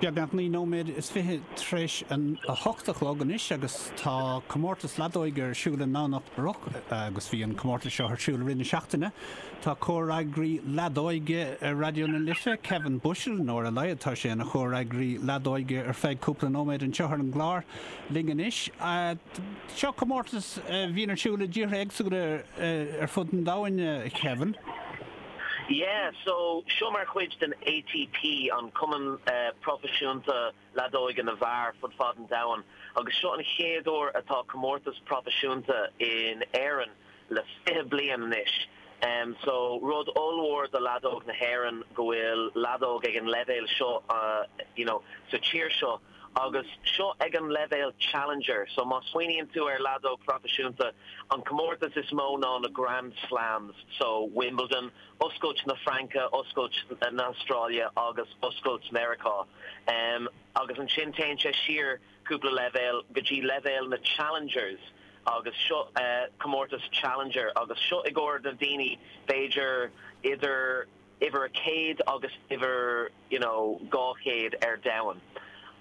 Beagnach naoi nóiméad is fiche tar éis a hocht a chlog anois agus tá comórtas leadóige ar siúl i nDomhnach Broc agus bhí an comórtas seo ar siúl i rith na seachtaine. Tá comhfhreagraí leadóige ar Raidió na Life, Kevin Bushell, nó ar a laghad tá sé ina chomhfhreagraí leadóige ar feadh cúpla nóiméad anseo ar an gclár, linn anois. Seo comórtas a bhíonn ar siúl i dtíortha éagsúla ar fud an domhain, a Kevin. Yeah, so seo mar chuid den ATP, an cumann proifisiúnta leadóige na bhfear, fud fad an domhain, agus seo an chéad uair atá comórtas proifisiúnta in Éirinn le fiche bliain anois. So rud ollmhór do leadóg na hÉireann go bhfuil leadóg ag an leibhéal seo, you know, sa tír seo. Agus seo ag an leibhéal Challenger, so má smaoiníonn tú ar leadóg phroifisiúnta, an comórtas is mó ná na Grand Slams, so Wimbledon, oscailt na Fraince, oscailt na Australia agus oscailt Meiriceá. Agus ansin téann sé siar cúpla leibhéal go dtí leibhéal na Challengers agus seo comórtas Challenger agus seo i gcomhair na daoine b'fhéidir idir, uimhir a céad agus uimhir you know dhá céad ar domhan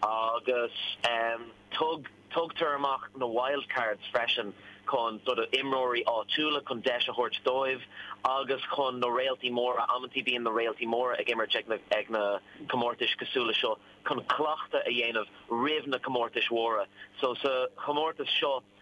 agus em tug tugtar amach na wildcards freisin chun sort of imreoirí áitiúla chun deis a thabhairt dóibh agus chun na réaltaí móra amantaí bíonn na réaltaí móra ag imirt ag na ag na comórtais cosúil le seo chun cleachtadh a dhéanamh roimh na comórtais mhóra so sa chomórtas seo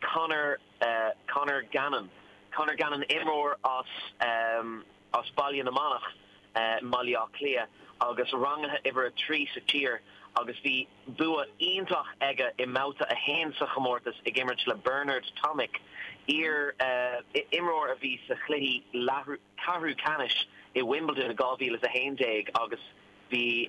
Conor Conor Gannon Conor Gannon imreoir as as Baile na Manach i mBaile Átha Cliath agus rangaithe uimhir a trí sa tír agus bhí bua iontach aige i mbabhta a haon sa chomórtas ag imirt le Bernard Tomic iar imreoir a bhí sa chluichí ceathrú ceannais i Wimbledon i 2011 agus bhí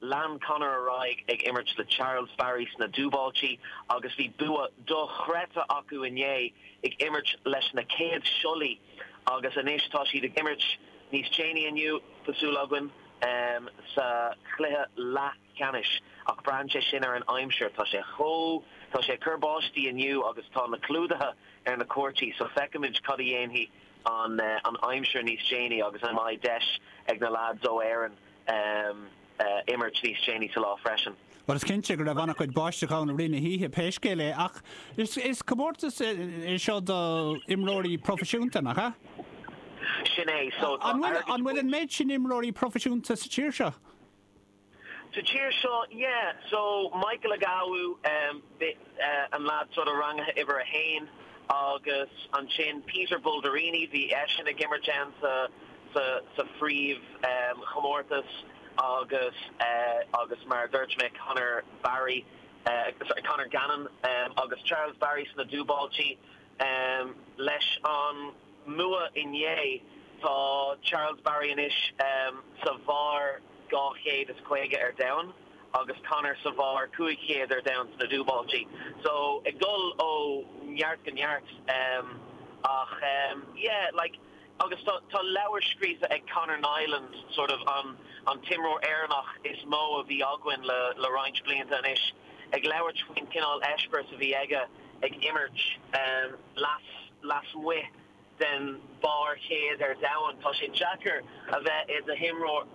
Lean Conor ar aghaidh ag imirt le Charles Barry sna dúbáiltí agus bhí bua dochreidte acu inné ag imirt leis na chéad síolaí agus anois tá siad ag imirt níos déanaí inniu, tá súil againn, sa cluiche leathcheannais. Ach braitheann sé sin ar an aimsir, tá sé chomh. tá sé ag cur báistí inniu agus tá na clúdaithe ar na cúirtí so feicfimid cad a dhéanfaidh an aimsir níos déanaí agus an mbeidh deis ag na lads ó Éirinn a imirt níos déanaí sa lá freisin. Bhuel, is cinnte go raibh an-chuid báisteach ann i rith na hoíche pé scéal é ach is comórtas é seo do imreoirí proifisiúnta, nach ea? Sin é, so tá airgead bainte. An bhfuil an méid sin imreoirí proifisiúnta sa tír seo? Sa tír seo, yeah, so Michael Agwi, bhí, an leaid sin a rangaíodh uimhir a haon, agus ansin Peter Bulderini, bhí eisean ag imirt ann sa sa phríomhchomórtas agus agus mar a dúirt mé Conor Barry, sorry, Conor Gannon agus Charles Barry sna dúbáiltí. Leis an mbua inné, tá Charles Barry anois sa bharr 250 ar domhan. agus Conor sa bharr 5 chéad ar domhan sna dúbáiltí. So, ag dul ó neart go neart. Ach, yeah, like, agus tá leabhar scríofa ag Conor Niland, sort of, an t-imreoir Éireannach is mó a bhí againn le roinnt blianta anois, ag labhairt faoin chineál eispéireas a bhí aige ag imirt lasmuigh. den bharr chéad ar domhan. Tá sé deacair a bheith i d'imreoir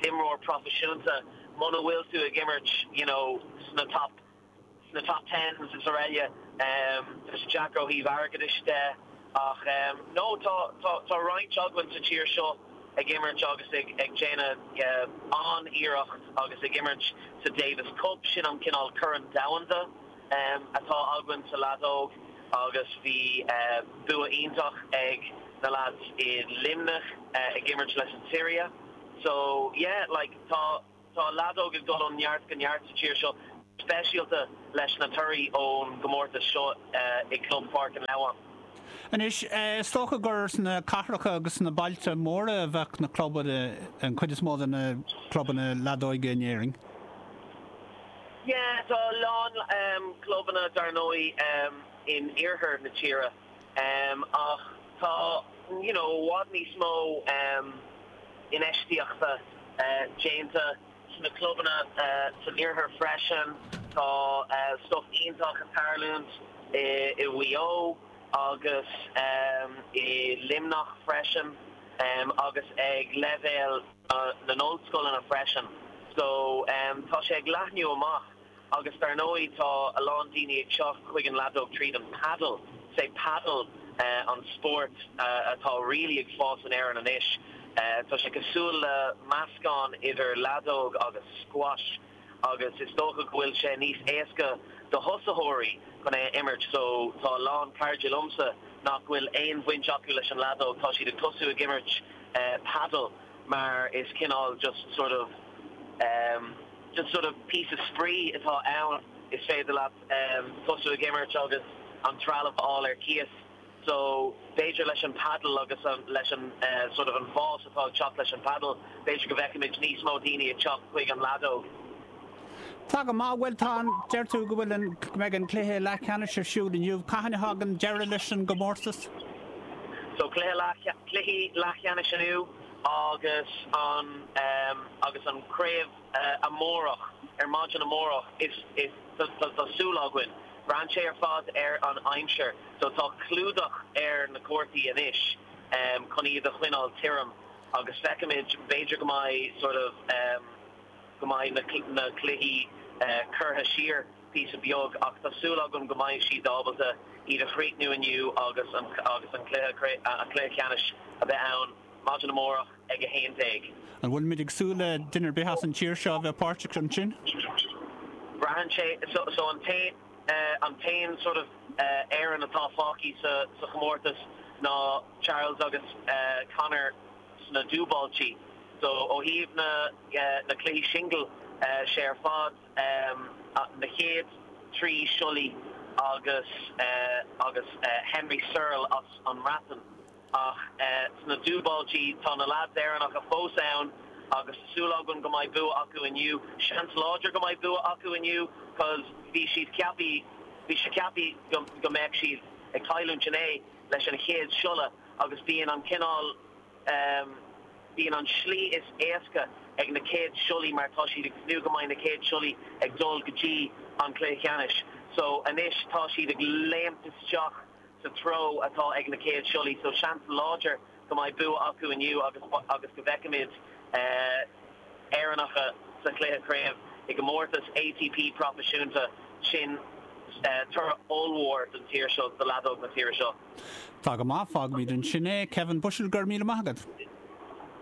imreoir proifisiúnta muna bhfuil tú ag imirt you know sna top sna top tens agus araile. Tá sé deacair ó thaobh airgeadais de. Ach no, tá tá tá roinnt againn sa tír seo ag imirt agus ag ag déanamh an-iarracht agus ag imirt sa Davis Cup. Sin an cineál corn domhanda. atá againn sa leadóg agus bhí bua iontach ag na lads i Luimneach ag imirt leis an tSiria so yeah like tá tá leadóg ag dul ó neart go neart sa tír seo speisialta leis na torthaí ón gcomórtas seo i gclub Pháirc an Leamháin. Anois is dócha gur sna cathracha agus sna bailte móra a bheadh na clubanna, an chuid is mó de na clubanna leadóige in Éirinn. Yeah, tá a lán clubanna dar ndóigh in oirthear na tíre ach tá you know i bhfad níos mó infheistíochta déanta sna clubanna san iarthar freisin. Tá stuff iontach ag tarlúint i Maigh Eo agus i Luimneach freisin agus ag leibhéal. na n-ollscoileanna freisin. So tá sé ag leathnú amach agus dar ndóigh tá a lán daoine ag teacht chuig an leadóg tríd an padel. Sé padel an spórt atá really ag fás in Éirinn anois. Tá sé cosúil le meascán idir leadóg agus squash. agus is dócha go bhfuil sé níos éasca do thosaitheoirí chun é a imirt so tá a lán cairde liomsa nach bhfuil aon bhaint acu leis an leadóg, tá siad ag tosú ag imirt padel mar is cineál just sort of em just sort of píosa spraoi atá ann is féidir leat em tosú ag imirt agus an trealamh a fháil ar cíos. so b'fhéidir leis an paddle agus leis an sort of an fás atá ag teacht leis an paddle b'fhéidir go bhfeicfimid níos mó daoine ag teacht chuig an leadóg. Tá go maith, bhuel tá an, deir tú go bhfuil an, go mbeidh an cluiche leathcheannais ar siúl inniu, cathain a thagann deireadh leis an gcomórtas? So cluiche leath, cluichí leathcheannais inniu agus an um, agus an craobh uh, amárach ar maidin amárach is is tá súil againn Braitheann sé ar fad ar an aimsir so tá clúdach ar na cúirteanna anois chun iad a choinneáil tirim agus feicfimid, b'fhéidir go mbeidh sort of em go mbeidh na cluichí curtha siar píosa beag ach tá súil agam go mbeidh siad ábalta iad a chríochnú inniu agus an cluiche ceannais a bheith ann maidin amárach. ag 11. An bhfuilimid ag súil le duine ar bith as an tír seo a bheith páirteach ansin? Braitheann sé. So an té, an t-aon sort of Éireannach atá fágtha sa chomórtas ná Charles agus Conor sna dúbáiltí. So ó thaobh na cluichí singil, sé ar fad na chéad trí síolaithe agus Henry Searle as an mBreatain. Ach sna dúbáiltí, tá na leads Éireannacha fós ann agus tá súil againn go mbeidh bua acu inniu. Seans láidir go mbeidh bua acu inniu cos bhí siad ceapaí, bhí sé ceapaí go mbeadh siad ag cailliúint inné leis an chéad síolaí agus bíonn an cineál ehm, bíonn an slí is éasca ag na chéad síolaithe mar tá siad ag tnúth go mbeidh na céad síolaithe ag dul go dtí an cluiche ceannais so anois tá siad ag léimt isteach. sa treo atá ag na chéad síolaithe so seans láidir go mbeidh bua acu inniu agus go bhfeicfimid Éireannacha sa chluiche craoibhe i gcomórtas ATP proifisiúnta. Sin toradh ollmhór don tír seo, do leadóg na tíre seo. Tá go maith, fágfaimid ansin é. Kevin Bushell, go raibh míle maith agat.